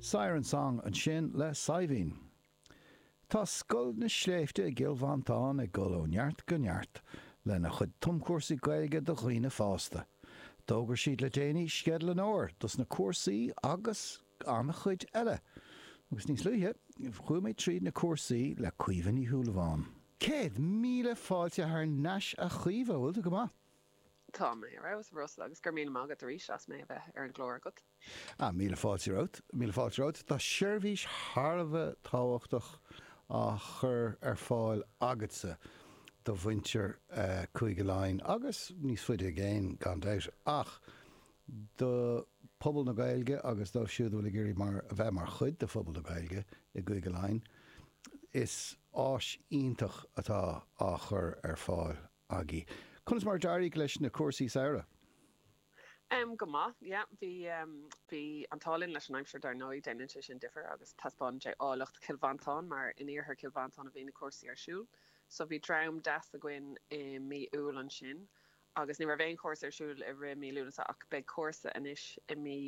Siren Song ansin le Saibhín. Tá Scoil na Sléibhte i gCill Mhantáin ag dul ó neart go neart lena chuid tumchúrsaí Gaeilge do dhaoine fásta. D'fhógair siad le déanaí sceideal an fhómhair dos na cúrsaí agus an-chuid eile. Agus níos luaithe, chuaigh mé tríd na cúrsaí le Caoimhe Ní Shúilleabháin. Céad míle fáilte thar n-ais a Chaoimhe, bhfuil tú go maith? Tá mé ar fheabhas, a Russell, agus go raibh míle maith agat arís as mé a bheith ar an gclár agat. Ah, míle fáilte romhat, míle fáilte romhat. Tá seirbhís thar a bheith tábhachtach á chur ar fáil agatsa do mhuintir Chúige Laighean agus níos faide i gcéin, gan dabht, ach do phobal na Gaeilge agus dóibh siúd a bhfuil ag iarraidh a bheith mar chuid de phobal na Gaeilge i gCúige Laighean. Is áis iontach atá á chur ar fáil. agaibh. Conas mar a d'éirigh leis na cúrsaí samhraidh? Go maith, yeah. Bhí, bhí an t-ádh linn leis an aimsir dar ndóigh, déanann sé sin difear agus taispeánann sé áilleacht Chill Mhantáin mar in iarthar Chill Mhantáin a bhí na cúrsaí ar siúl. So bhí dream deas againn i mí Iúil ansin agus ní raibh aon chúrsa ar siúl i rith mí Lúnasa ach beidh cúrsa anois i mí,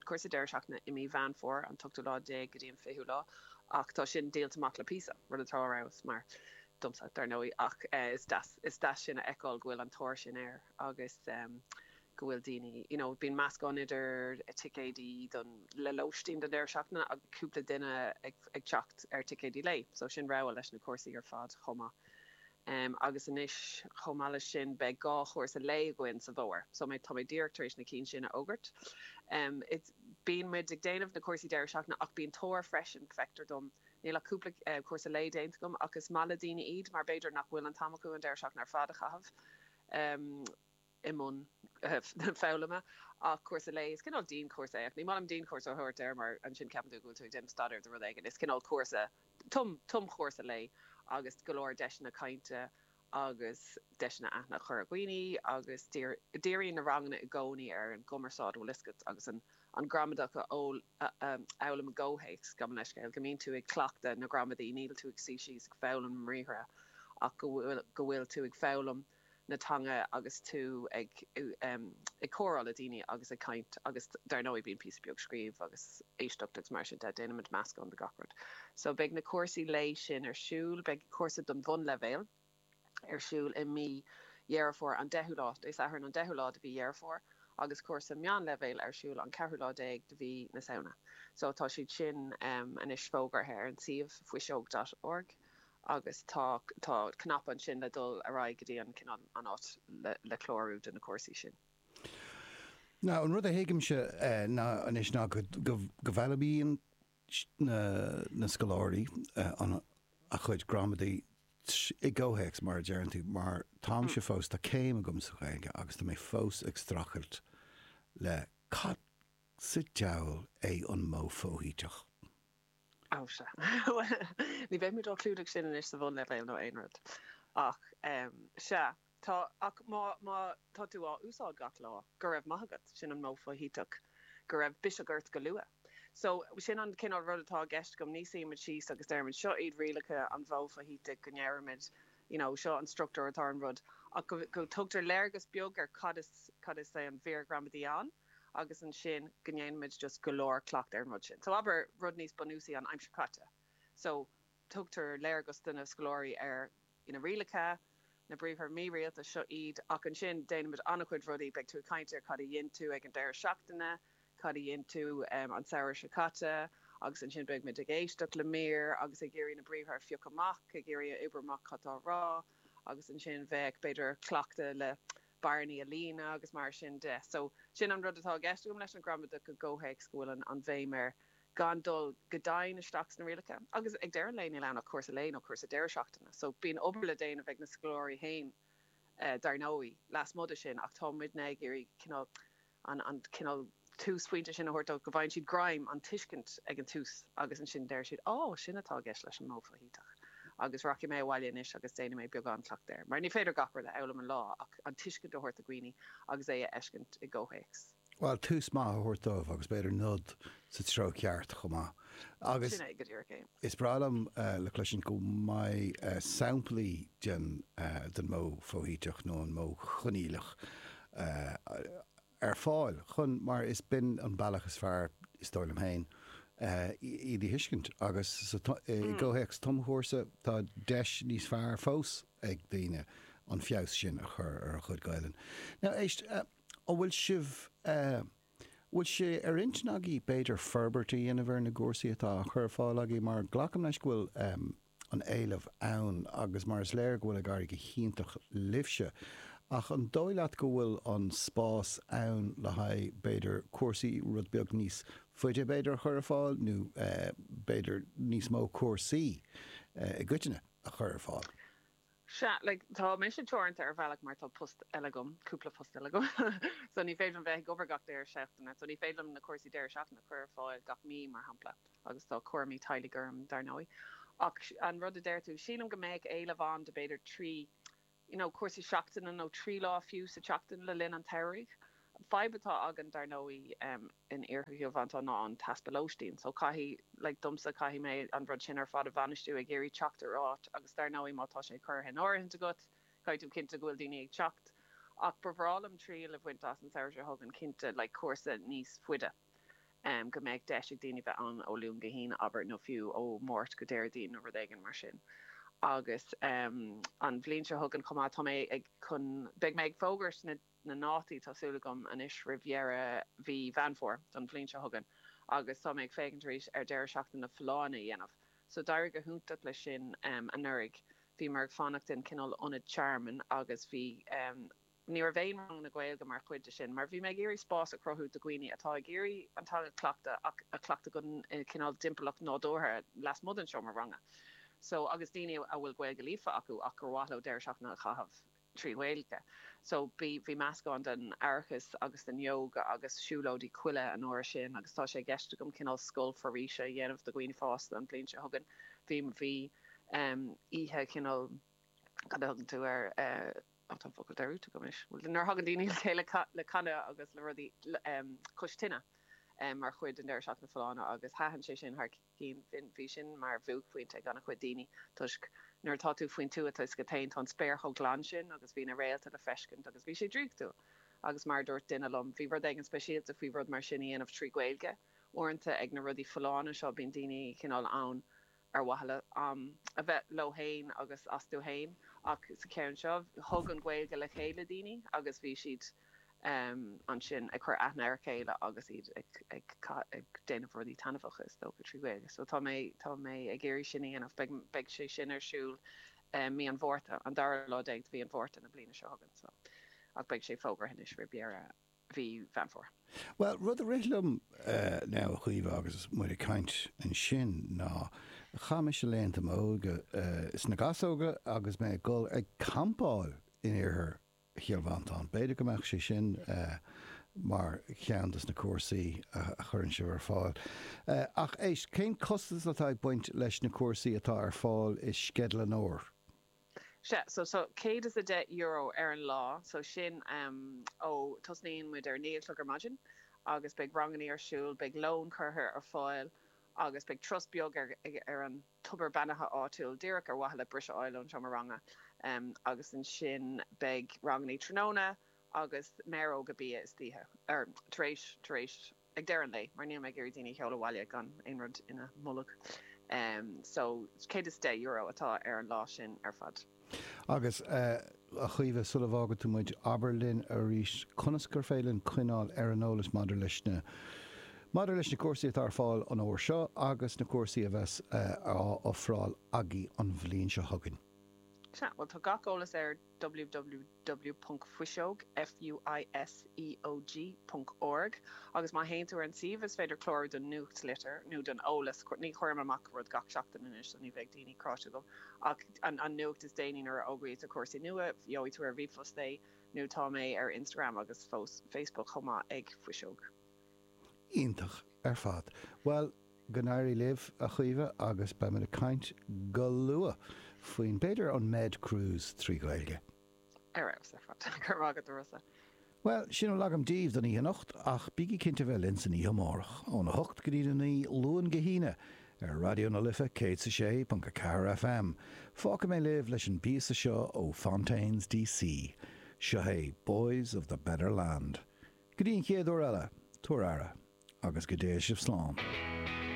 cúrsa deireadh seachtaine i mí Mheán Fómhair, an t-ochtú lá déag go dtí an fichiú lá, ach tá sin díolta amach le píosa, rud atá ar fheabhas, mar, domsa, dar ndóigh, ach is deas, is deas sin a fheiceáil go bhfuil an tóir sin air agus go bhfuil daoine, you know, bíonn meascán idir ticéidí don, le lóistín don deireadh seachtaine agus cúpla duine ag, ag teacht ar thicéidí lae, so sin rogha leis na cúrsaí ar fad chomh maith. em, agus anois, chomh maith leis sin, beidh dhá chúrsa lae againn sa bhfómhar, so mé, tá mé díreach tar éis na cinn sin a fhógairt. Em, it's, bíonn muid ag déanamh na cúrsaí deireadh seachtaine ach bíonn tóir freisin, feictear dom, níl ach cúpla, eh, cúrsa lae déanta agam ach is maith le daoine iad mar b'fhéidir nach bhfuil an t-am acu an deireadh seachtaine ar fad a chaitheamh, em, i mbun foghlama ach cúrsa lae, is cineál dianchúrsa é ach ní maith liom dianchúrsa a thabhairt air mar ansin ceapann tú go bhfuil tú ag déanamh staidéir do rud éigin, is cineál cúrsa, tumchúrsa lae agus go leor deiseanna cainte agus deiseanna aithne a chur ar dhaoine agus díríonn na ranganna i gcónaí ar an gcumarsáid, bhfuil fhios agat agus an ghramadach a fhoghlaim i gcomhthéacs, gabh mo leithscéal, go mbíonn tú ag cleachtadh na gramadaí, níl tú ag suí síos ag foghlaim na mbriathra ach go bhfuil tú ag foghlaim. na teanga agus tú ag comhrá le daoine agus ag caint agus dar ndóigh bíonn píosa beag scríobh agus éisteacht agus mar sin de, déanaimid meascán de gach rud. So beidh na cúrsaí lae sin ar siúl, beidh cúrsa don bhunleibhéal ar siúl i mí Dheireadh Fómhair, an deichiú lá, Dé Sathairn an deichiú lá de mhí Dheireadh Fómhair agus cúrsa meánleibhéil ar siúl an ceathrú lá déag de mhí na Samhna. So tá siad sin anois fógartha ar an suíomh, fuiseog dot org. agus tá tá cnaipe ansin le dul ar aghaidh go dtí an cineál an áit le le clárú do na cúrsaí sin. Now an rud a thuigimse ná anois ná go go go bhfeidhmíonn na na scoláirí a gcuid gramadaí i gcomhthéacs mar a deireann tú mar táimse fós tá céim agam sa Ghaeilge agus tá mé fós ag strachailt le cad sa deabhal é an modh foshuiteach? Ó, sea. Bhuel, ní bheidh muid á chlúdach sin anois sa bhunleibhéal nó aon rud. Ach, em, sea, tá, ach má, má tá tú á úsáid gach lá, go raibh maith agat, sin an modh foshuiteach, go raibh biseach ort go luath. So, sin an cineál rud atá i gceist agam, nach suímid síos agus deirimid seo iad rialacha an mhodh foshuitigh go ndeirimid you know seo an struchtúr atá ar an rud ach go, go dtugtar léargas beag ar cad is, cad is é an mhír ghramadaí ann. agus ansin go ndéanaimid just go leor cleachtaidh ar an rud sin. So abair rud níos bunúsaí an aimsir chaite. So tugtar léargas do na scoláirí ar na rialacha, na briathra mírialta, seo iad, ach ansin déanaimid an-chuid rudaí, beidh tú ag caint ar cad a dhein tú ag an deireadh seachtaine, cad a dhein tú an samhradh seo caite agus ansin beidh muid ag éisteacht le mír agus ag iarraidh na briathra a phiocadh amach, ag iarraidh a oibriú amach cad tá á rá agus ansin bheadh, b'fhéidir, cleachtadh le. bearnaí a líonadh agus mar sin de. So, sin an rud atá i gceist agam leis an ghramadach i gcomhthéacs go bhfuil an bhéim ar gan dul go domhain isteach sna rialacha. Agus ag deireadh an lae níl ann ach cúrsa lae nó cúrsa deireadh seachtaine. So, bíonn obair le déanamh ag na scoláirí féin dar ndóigh lasmuigh de sin ach tá muidne ag iarraidh cineál an cineál túsphointe sin a thabhairt dóibh go bhfaigheann siad greim, an tuiscint ag an tús agus ansin deir siad 'Á, sin atá i gceist leis an modh foshuiteach agus rachaidh mé abhaile anois agus déanfaidh mé beagán cleachtaidh air. Mar ní féidir gach rud a fhoghlaim in aon lá ach an tuiscint a thabhairt do dhaoine agus é a fheiscint i gcomhthéacs. Bhuel, tús maith a thabhairt dóibh agus b'fhéidir nod sa treo ceart chomh maith. Agus is breá liom le cloisint go mbeidh samplaí den modh foshuiteach nó an modh coinníollach eh, ar fáil chun, mar is b'in an bealach is fearr, is dóigh liom féin, eh, iad a thuiscint agus sa, i gcomhthéacs tumchúrsa tá deis níos fearr fós ag daoine an feabhas sin a chur ar a gcuid Gaolainne. Now, éist, eh, an bhfuil sibh, eh, bhfuil sé ar intinn agaibh b'fhéidir forbairt a dhéanamh ar na cúrsaí atá á chur ar fáil agaibh mar glacaim leis go bhfuil, eh, an-éileamh ann, agus mar is léir go bhfuil ag éirí go hiontach libhse. Ach an dóigh leat go bhfuil an spás ann le haghaidh, b'fhéidir, cúrsaí rud beag níos faide, b'fhéidir, a chur ar fáil, nó b'fhéidir níos mó cúrsaí i gcoitinne a chur ar fáil? 'sea, like, tá mise teoranta ar bhealach mar tá post eile agam, cúpla post eile agam, so ní féidir liom bheith ag obair gach deireadh seachtaine, so ní féidir liom na cúrsaí deireadh seachtaine a chur ar fáil gach mí, mar shampla, agus tá cúramaí teaghlaigh orm, dar ndóigh. Ach an rud a deir tú, sílim go mbeadh éileamh ann do, b'fhéidir, trí, you know, cúrsaí seachtaine nó trí lá fiú sa tseachtain le linn an tsamhraidh. An fhadhb atá againn, dar ndóigh, in Iarthar Chill Mhantáin ná an t-easpa lóistín. So, caithfidh, like, domsa, caithfidh mé an rud sin ar fad a bhainistiú, ag iarraidh teacht ar áit agus, dar ndóigh, má tá sé curtha in áirithint agat, caithfidh tú cinnte go bhfuil daoine ag teacht. Ach ba bhreá liom triail a bhaint as an samhradh seo chugainn, cinnte, like, cúrsa níos faide, em, go mbeadh deis ag daoine bheith ann ó Luan go hAoine, abair, nó fiú ó Mháirt go Déardaoin nó rud éigin mar sin. Agus, em, an bhliain seo chugainn chomh maith, tá mé ag, chun, beidh mé ag fógairt na. na ndátaí, tá súil agam, anois roimh dheireadh mhí Mheán Fómhair don bhliain seo chugainn agus tá mé ag féachaint arís ar deireadh seachtaine na Folláine a dhéanamh. So d'éirigh go hiontach leis sin anuraidh, bhíomar ag fanacht i gcineál ionad tearmainn agus bhí, ní raibh aon ranganna Gaeilge mar chuid de sin mar bhí mé ag iarraidh spás a chruthú do dhaoine atá ag iarraidh an teanga a chleachtadh ach a chleachtadh i gcineál timpeallacht nádúrtha lasmuigh den seomra ranga. So agus daoine a bhfuil Gaeilge líofa acu ach gur mhaith leo deireadh seachtaine a chaitheamh i trí Ghaeilge. So bhí meascán den aireachas agus den ióga agus siúlóidí coille an uair sin agus tá sé i gceist agam cineál scoil foraoise a dhéanamh do dhaoine fásta an bhliain seo chugainn. Bhí, bhí em oíche chineál, cad a thugann tú air eh, ó tá an focal dearmadta agam anois, bhuel nuair a thagann daoine le chéile le canadh agus le rudaí le em cois tine em mar chuid den deireadh seachtaine folláine agus thaitin sé sin thar cinn. Bhí sin mar bhuaicphointe ag an-chuid daoine toisc nuair atá tú faoin tuath is go téann, tá an spéir chomh glan sin agus bhí na réalta le feiscint agus bhí sé draíochtúil agus mar a dúirt duine liom, bhí rud éigin speisialta faoi rud mar sin a dhéanamh trí Ghaeilge. Uaireanta ag na rudaí folláine seo bíonn daoine cineál ann ar mhaithe le a bheith leo féin agus leo féin ach sa cheann seo thug an Ghaeilge le chéile daoine agus bhí siad ansin ag cur aithne ar a chéile agus iad ag déanamh rudaí taitneamhacha, is dócha, trí Ghaeilge. So tá mé tá mé ag iarraidh sin a dhéanamh. Beidh beidh sé sin ar siúl mí an Mhárta, an dara lá déag de mhí an Mhárta na bliana seo chugainn. So ach beidh sé fógraithe anois roimh dheireadh mhí Mheán Fómhair. Bhuel, rud a rith liom now, a Chaoimhe, agus muid ag caint ansin ná chaith mise laethanta m'óige sna gasóga agus mé ag dul ag campáil in iarthar Chill Mhantáin. B'fhéidir go mbeadh sé sin mar cheann de na cúrsaí a chuireann sibh ar fáil. Ach éist, cén costas atá ag baint leis na cúrsaí atá ar fáil i Sceideal an Fhómhair? Sea, so tá €110 ar an lá, so sin ó, tosnaíonn muid ar a naoi a chlog ar maidin agus beidh rangannaí ar siúl, beidh lón curtha ar fáil agus beidh turas beag ar an, tobar beannaithe áitiúil, díreach ar mhaithe le briseadh a fháil ón seomra ranga agus ansin beidh rangannaí tráthnóna agus méaróga bia istoíche. tar éis, tar éis, ag deireadh an lae mar níl mé ag iarraidh daoine a sheoladh abhaile gan aon rud ina mbolg. so €110 atá ar an lá sin ar fad. Agus, a Chaoimhe, sula bhfágann tú muid, abair linn arís conas gur féidir linn coinneáil ar an eolas maidir leis na maidir leis na cúrsaí atá ar fáil an fómhar seo agus na cúrsaí a bheas á ofráil agaibh an bhliain seo chugainn. Sea, bhuel, tá gach eolas ar ww. W. Fuiseog, FUISEOG, ponc org, agus má théann tú ar an suíomh is féidir clárú don nuachtlitir nó don eolas, ní chuirim amach rud gach seachtain anois so ní bheidh daoine cráite agam, ach an nuacht is déanaí nuair a fhógraítear cúrsaí nua, gheobhaidh tú ar ríomhphost é, nó tá mé ar Instagram agus Facebook chomh maith ag fuiseog. Iontach ar fad. Bhuel, go n-éirí libh, a Chaoimhe, agus beimid ag caint go luath faoin, b'fhéidir, an Med Cruise trí Ghaeilge. Ar fheabhas ar fad. Go raibh maith agat, a Rossa. Bhuel, sin a bhfuil agam daoibh don oíche anocht, ach bígí cinnte bheith linn san oíche amárach, óna hocht go dtí a naoi, Luan go hAoine, ar Raidió na Life 106.4 FM. Fágfaidh mé libh leis an bpíosa seo ó Fontaines D.C. Seo é Boys of the Better Land. Go dtí an chéad uair eile, tabhair aire, agus go dté sibh slán.